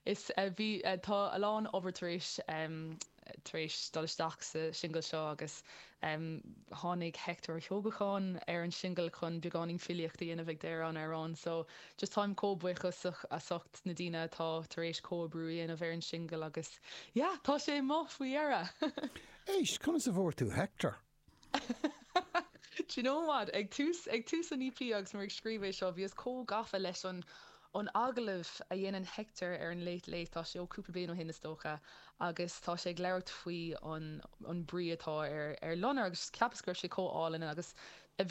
Is bhí. Tá a lán obair tar éis tar éis dul isteach sa singil seo agus tháinig Hector Ó hEochagáin ar an singil chun beagáinín filíocht a dhéanamh ag deireadh an amhráin so just táim comh buíoch as ucht na daoine atá tar éis comhoibriú a dhéanamh ar an singil agus yeah tá sé amuigh faoi dheireadh! Éist, conas a bhfuair tú Hector? Do you know what? Ag tús, ag tús an EP agus mé ag scríobh é seo, bhíos chomh gafa leis an, an agallamh a dhéanann Hector ar an Late Late, tá sé ó cúpla bliain ó shin is dócha, agus tá sé ag labhairt faoi an, an brí atá ar, ar loinnir agus cheapas go raibh sé chomh álainn agus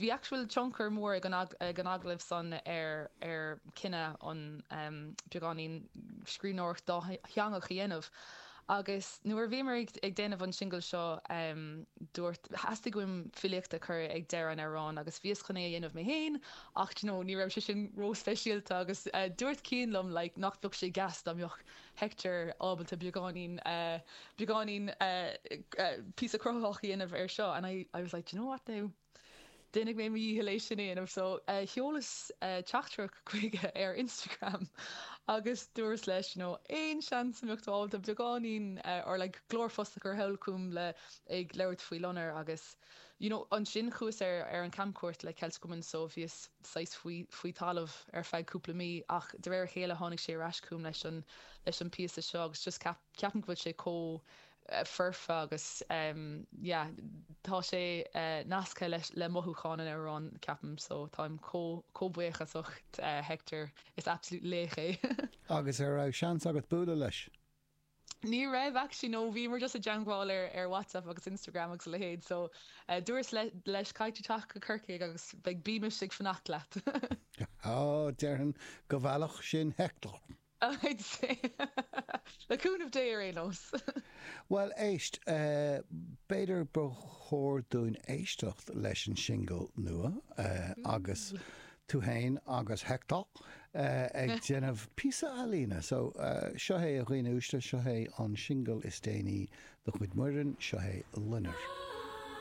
bhí actual tionchar mór ag an, ag an agallamh san ar, ar cinneadh an, em, beagáinín scríbhneoireacht dátheangach a dhéanamh. Agus nuair a bhíomar ag déanamh an singil seo, dúirt, theastaigh uaim filíocht a chur ag deireadh an amhráin agus bhíos chun é a dhéanamh mé féin ach do you know, ní raibh sé sin ró-speisialta agus dúirt Cian liom like nach bheadh sé deas dá mbeadh Hector ábalta beagáinín, beagáinín píosa cruthaitheach a dhéanamh air seo and I, I was like, do you know what now? Déanfaidh mé mo dhícheall é sin a dhéanamh. So, sheolas teachtaireacht chuige ar Instagram agus dúras leis you know aon seans a mbeadh tú ábalta beagáinín or like glórphost a chur thall chugam le ag labhairt faoi loinnir agus you know ansin chuas ar ar an camchuairt le Celtic Woman so bhíos saghas faoi faoi talamh ar feadh cúpla mí ach de réir a chéile tháinig sé ar ais chugam leis an leis an píosa seo agus just ceap ceapaim go bhfuil sé chomh foirfe agus yeah tá sé nasctha leis le mothúcháin an amhráin ceapaim so táim chomh buíochasach Hector is absolute laoch é. Agus ar raibh seans agat bualadh leis? Ní raibh actually no bhíomar just i dteangmháil ar ar Whatsapp agus Instagram agus a leithéid so dúras leis caithfidh tú teacht go Corcaigh agus beidh bímis ag fanacht leat. Ó, déarfainn go bhfeilfeadh sin Hector. I'd say, le cúnamh Dé ar aon nós! Bhuel, éist, b'fhéidir ba chóir dúinn éisteacht leis an singil nua agus tú fhéin agus Hector ag déanamh píosa ealaíne. So, seo é a dhaoine uaisle, seo é an singil is déanaí de chuid Muireann, seo é Loinnir.